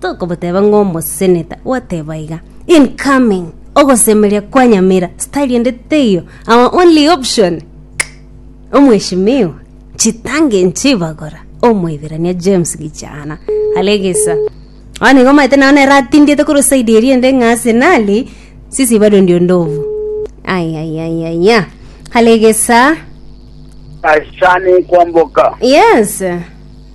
Tokoboteba ng'a omoseneta gwateba iga, incoming, ogosemeria kwa Nyamira, style ende teiyo, our only option, Omweshimiwa, chitangi nchibagora, Omoiberania James Gichana, alegesa. Bono igo omanyete nao nere atindiete korwa side eria ende ng'a ase nari, sisi bado ndio ndovu. Ayayayaya, alegesa. Asane kwamboka. Yes.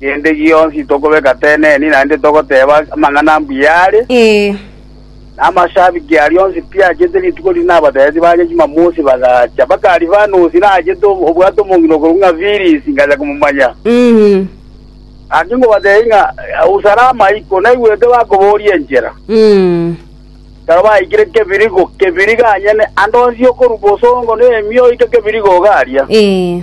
Gende gionsi tokobeka teneni, naende togoteeba amang'ana ambuya are. Ee. Na amashabiki aria onsi pi achete rituko riria nabateebeti banye chimamosi bagacha. Baka Alifanosi nachete obwate omong'ina okorwa ng'a Filis, ngacha komomanya. Mm. Gaki ngobateebie ng'a au salama iko, naigwete bakobooria enchera. Mm. Ekero baikire kebirigo, kebirigo anyene, ande onsi okorua bosongo na emiyo oike kebirigo ogaria. Ee.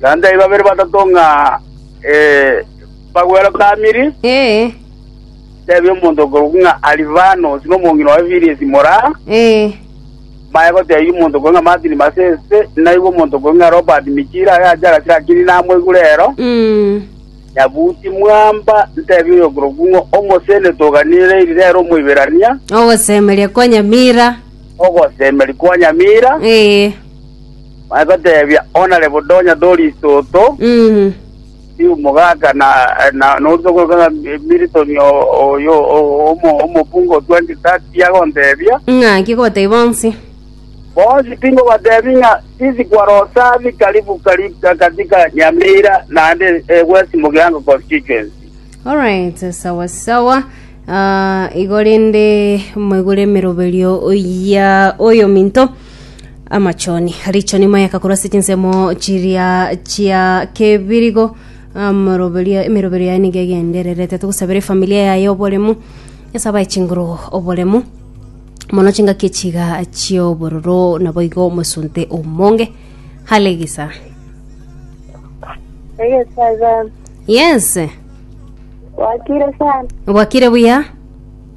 naende aye babere batato ng'a bagwerokamiri, tebia omonto okorokwa ng'a Alifanos, na omong'ina oye Philesi mora, mbaye gotebia omonto okorokwa ng'a Martin Masese, naigwe omonto okorokwa ng'a Robert Michira, aye ache agachire akiri namoigure ero, nyabuti mwamba, ntebia oyokorokwa ng'a omosene toganire eri rero Omoiberania, Ogosemeria kwa Nyamira. ogosemeria kwa Nyamira. Bagoteebia, Onare bodonya dori itoto, riumo gaka, na noria okorokwa ng'a Milton oyo omokungu o 2030 agonteebia, Ng'aki goteebia bonsi? Bonsi tingobateebia ng'a sisi kwarosabi karibu karibu katika Nyamira naende eh, West Mugirango constituency. Alright, sawa sawa. Ah, igo rende moigure emeroberio ya oyo minto amachoni richoni mayaka korwa ase chinsemo chiria chia kebirigo amoroberio emeroberio yaye nigo egendererete togosabera efamilia yaye oboremu nyasae abae chinguru oboremu mono chingaki echiga chiobororo naboigo omosunte omonge hale gisa Egesaga yes bwakire sana bwakire buya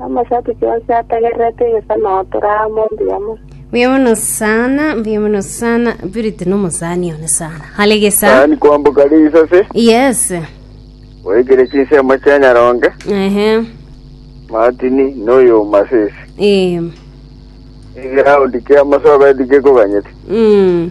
Amasakuchi onsi ategererete egesano tore amo mbuya mono. Mbuya mono sana, mbuya mono sana. Purity no mosani one sana. Hale gesa. Sani kwamboka risase, Yes. oikire chinsemo chia Nyaronge, Ehe. Martini, noyo Masisi. Eh. Egeroundi kia Masoga etigekoganyete. Mm.